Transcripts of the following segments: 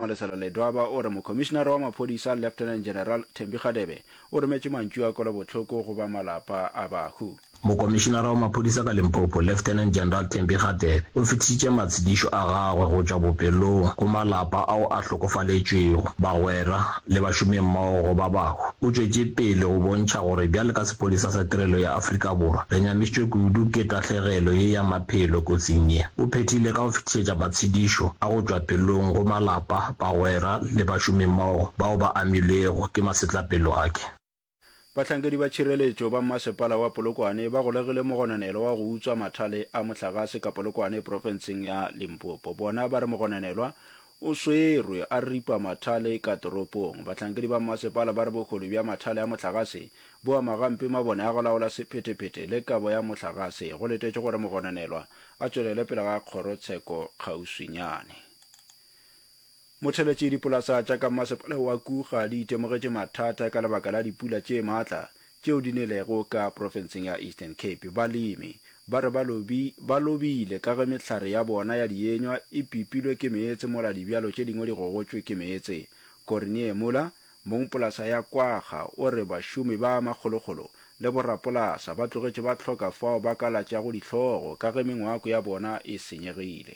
Malesela Ledwaba o re Mokhomišinara wa Maphodisa Lieutenant General Thembi Kgadebe o rometše mantšu a kwelobohloko go ba malapa a bahu. Mokomišinara wa Maphodisa ka Limpopo Lieutenant General Thembi Kgadebe o fetišitše matshedišo a gagwe go tšwa bopelong go malapa ao a hlokofaletšwego, bagwera le bašomimmogo go ba bahu. O tšwetše pele go bontšha gore bjale ka Sephodisa sa Tirelo ya Afrika Borwa re nyamišitšwe kudu ke tahlegelo ye ya pelo kotsing ye. O phethile ka go fetišetša matshedišo a go tšwa pelong go malapa, bagwera le bašomimmogo bao ba amilwego ke masetlapelo ake. Bahlankedi ba tšhireletšo ba mmasepala wa Polokwane ba golegile mogononelwa wa go utswa mathale a mohlagase ka Polokwane profenseng ya Limpopo. Bona ba re mogononelwa O swerwe a ripa mathale ka toropong. Bahlankedi ba mmasepala ba re bohole bja mathale a mohlagase bo ama gampe mabone a go laola sephetephete le kabo ya mohlagase. Go letetšwe gore mogononelwa a tšwelele pele ga kgorotsheko kgauswinyane. Motheletši Dipolasa tša ka mmasepala wa Kuga di itemogetše mathata ka lebaka la dipula tše matla tšeo di nelego ka profenseng ya Eastern Cape. Balemi ba re ba lobi, ba lobile ka ge mehlare ya bona ya dienywa e pipilwe ke meetse mola dibjalo tše dingwe di gogotšwe ke meetse. Corinier Muller, mong polasa ya Kwagga o re bašomi ba makgolokgolo le borapolasa ba tlogetše ba hloka fao ba ka latšago dihlogo ka ge mengwako ya bona e senyegile.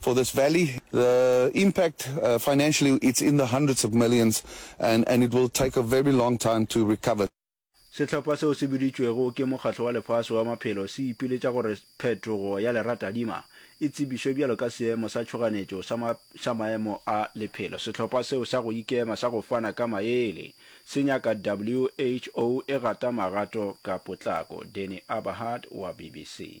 For this valley, the impact financially it's in the hundreds of millions and and it will take a very long time to recover. Sehlopha seo se biditšwego ke Mokgatlo wa Lefase wa Maphelo se ipiletša gore phetogo ya leratadima e tsebišwe bjalo ka seemo sa tšhoganetšo sa ma sa maemo a lephelo. Sehlopha seo sa go ikema sa go fana ka maele se nyaka WHO e gata magato ka potlako. Danny Aberhart wa BBC.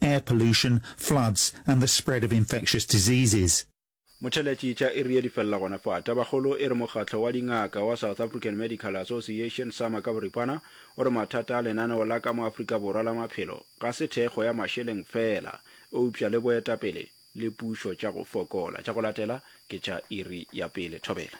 air pollution, floods and the spread of infectious diseases. Motšheletšitša e rile di felela gona fa. Tabakgolo e re mokgatlo wa dingaka wa South African Medical Association, sama, ka boripana o re mathata a lenaneo la ka mo Afrika Borwa la maphelo ga se thekgo ya mašeleng feela eupša le boetapele le pušo tša go fokola. Tša go latela ke tša iri ya pele. Thobela.